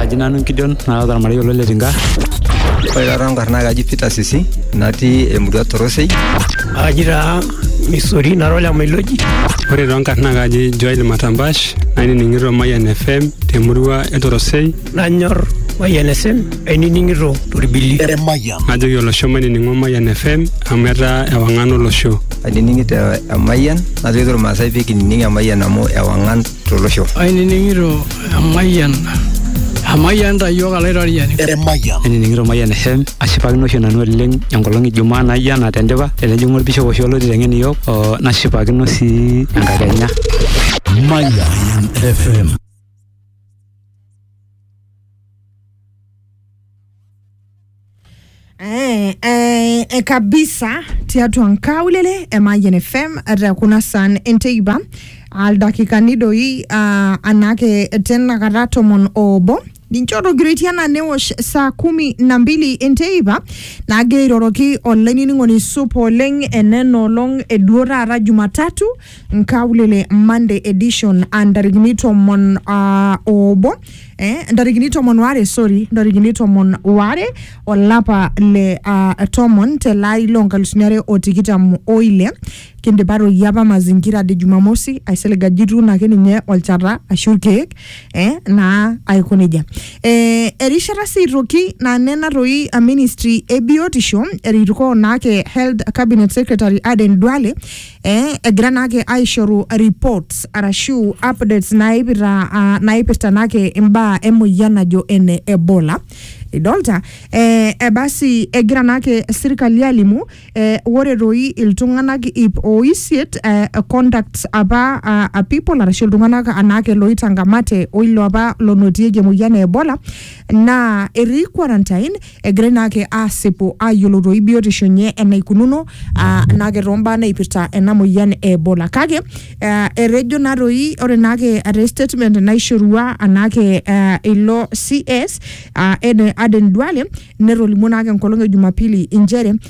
Aji nanu Gideon naata ormarei olo le Tinga. Ore taata enkarna kaji Peter Sisi natii emurua Torosei. Aji taa Misori nara ole Mailoji. Ore too nkarna kaji Joel Matambash nainining'ito Mayian FM temurua e Torosei. Nanyor Mayian FM ainining'ito torbili. Najoki olosho mainining'o Mayian FM amu etaa ewang'an olosho. Ainining'ito Emayian najoki irmaasai pee kinining Emayian amu ewang'an tolosho. Ainining'ito emayian Amayian ta iyiook alaitoriani. Emayian. Ainining'ito Mayian FM ashipakino oshi nanu oleng enkolong e Jumaa naijo ena tendipa tenejing'u olbishop oshi olo aiteng'en iyiook oo nashipakino sii enkakenya. Mayian FM. Eh, eh, eh, kabisa tiatua nkaulele e Mayian FM te kuna san enteipa aldakikani doi ah, anake tenakata tomon obo ninche otogiroitie anaa newosh saa kumi na mbili enteipa naagira airoroki olainining'oni supa oleng enena olong eduo taata jumatatu nkaulele monday edition a ntarikini tomon ah, obo eh, ntarikini tomon waare sorry ntarikini tomon waare olapa le uh, tomon tele ari loo nkalusuni are o tikitam oile kindipa toi apa mazingira de jumamosi aisilig ajo ituuno ake ninye olchata ashu irkeek eh, naa aiko nejia eh, erishata sii toki naa nena toi a ministry e biotisho erikoo naake health cabinet secretary Aden Duale eh, egira naake aishoru reports arashu updates naipirta ah, naipirta naake imbaa emoyian najo ene ebola idolta eh, eh, basi egira naake sirkali alimu eh, ore toi iltung'anak ip oisiet eh, contacts apa ah, ah, people arashu iltung'anak anaake loitangamate oilo apa lonotieki emoyian e ebola naa etii quarantine egira ina ake aasipu aayiolotoyu biotisho enye enaikununo aa naake toombaa naipirta ena moyian e Ebola. Kake eh, etejo naa toi ore naake te statement naishorua anaake eh, ilo CS ah, Eden Duale netolimuo naake enkolong e Jumapili inchere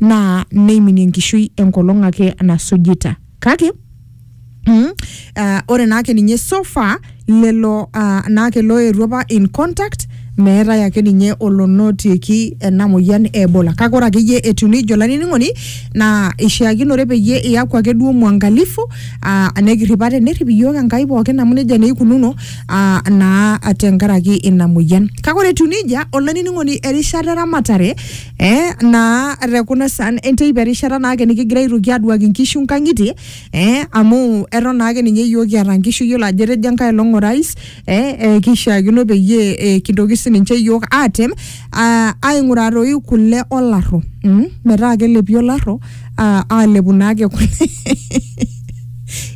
naa neiminie enkishui enkolong ake nasujita kake Mm, uh, ore naake ninye so far lelo uh, naake loetuo apa in contact meetae ake ninye olonotieki ena moyian e ebola kake ore akeyie etiu nejo olainining'oni naa ishiakinore peyie iyaku ake duo mwangalifu uh, nekirrip ate nerrip iyiook enkai pookin amu nejia naa ikununo uh, naa tenkaraki ina moyian kake ore etiu nejia olainining'oni erishata eramatare Eh, naa te kuna saan enteipa erishata naake nikigira aitoki aduaki nkishu nkang'itie eh, amu eton naake ninye iyiok kiata nkishu iyiolo ajo etejo enkae olong orais eh, eh, kishiakino peyie eh, kintoki sininche iyiok atem ah, aing'uraa toi kule olarro mm? metaa kelepi olarro ah, alepu naake kule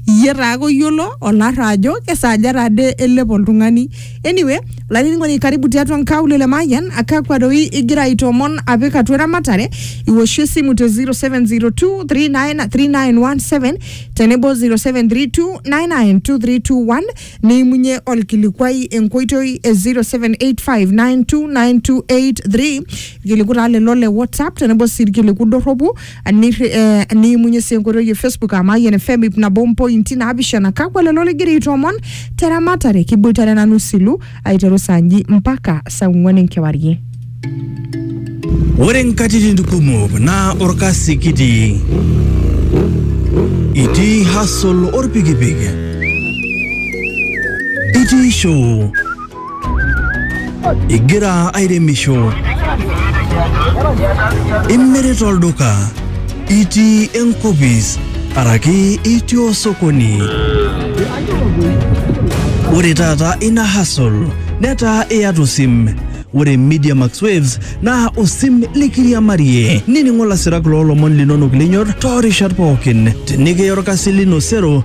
iyie taake oyiolo olarro ajo kesaaja tade elep oltung'ani Anyway, olainining'oni karibu tiatua nkaulele le Mayian akakwa doi igira aitoomon apik atua eramatare iwoshi esimu te 0702393917 tenebo 0732992321 niimunye olkilikuai enkoitoi e 0785929283 irkiliku taa lelo le WhatsApp tenebo sii irkiliku dorropu Nirri- eh, niimunye sii enkoitoi e facebook aa mayian fm ip nabo mpointi naapishana kakwa lelo ligira aitoomon te ramatare kiboitare nanu silu aiteru saa nji mpaka saa ong'uan enkewarie Ore nkatitin kumok naa orkasi kitii. Itii hustle orpikipik. Itii show Igira airemisho? Imirita olduka? Itii enkopis? Araki itii osokoni? Ore taata ina hustle netaa iyata osim. Ore Media Max Waves naa osim likiriamarie. Nining'o lasirak loo lomon linonok linyor toorishat pookin. Tenikiya orkasi lino sero